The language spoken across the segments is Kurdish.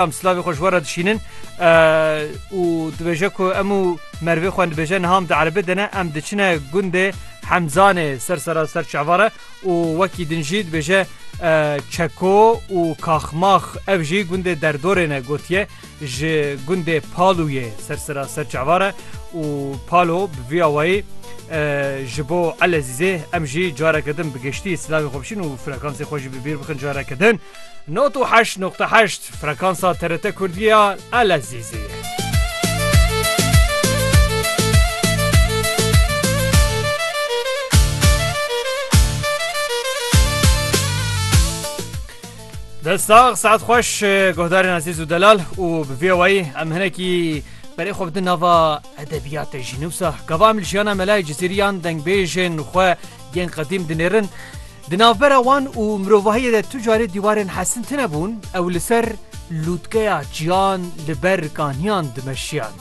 Em slavê xwe ji we re dişînin û dibêje ku em û mervê xwe dibêje niham di erebê de ne em diçine gundê hemzanê ser sera ser çavare û wekî din jî dibêje çeko û kaxmax ev jî gundê derdorê ne gotiye ji gundê palûyê ser sera ser çavare û palo bi vî awayî ji bo elezîzê em jî careke din bi giştî slavê xwe bişîn û frekansê xwe jî bi bîr bixin careke din. Nod û heşt noqte heşt frekansa TRT Kurdî ya Elezîzê. Destsax saet xweş guhdarên ezîz û delal û bi vê wayî em hinekî berê xwe bidin nava edebiyate jî nûsa gava em li jiyana melayê cizîriyan dengbêjên xwe yên qedîm dinêrin Di navbera wan û mirovahiyê de tu carê dîwarên hesin tine bûn, ew li ser lûtkeya çiyan li ber kaniyan dimeşiyan.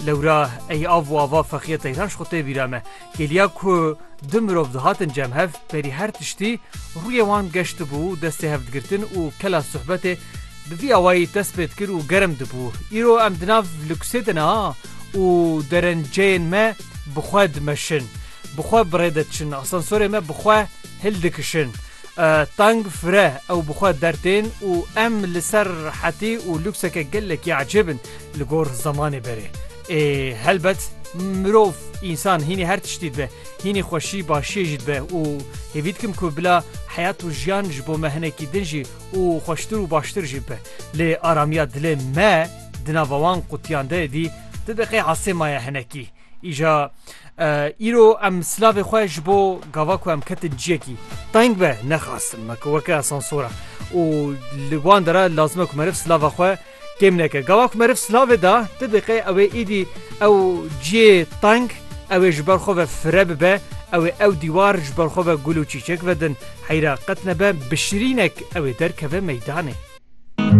Lewra ey av û ava feqîya Teyran ji xwe tê bîra me. Geliya ku du mirov dihatin cem hev, berî her tiştî rûyê wan geş dibû, destê hevdigirtin û kela suhbetê bi vî awayî dest pê dikir û germ dibû. Îro em di nav lûksê de ne û derenceyên me bi xwe dimeşin. Bi xwe bi rê de diçin, asansorê me bi xwe hildikişin. Tang fire ew bi xwe dertên û em li ser hetî û lûkseke gelekî ecêb in li gor zemanê berê. Ê helbet mirov, însan hînî her tiştî dibe, hînî xweşî başiyê jî dibe û hêvî dikim ku bila heyat û jiyan ji bo me hinekî din jî û xweştir û baştir jî bibe. Lê aramiya dilê me di nava wan qutiyan de dî ti deqê asê maye hinekî. Îja îro em silavê xwe ji bo gava ku em ketin ciyekî teng be nexastin me ku weke asansora û li wan dera lazime ku meriv silava xwe kêm neke. Gava ku meriv silavê da ti diqê ew ê îdî ew ciyê teng ew ê ji ber xwe ve fire bibe ew ê ew dîwar ji ber xwe ve gul û çîçek vedin heyra qet nebe bi şirînek ew ê derkeve meydanê.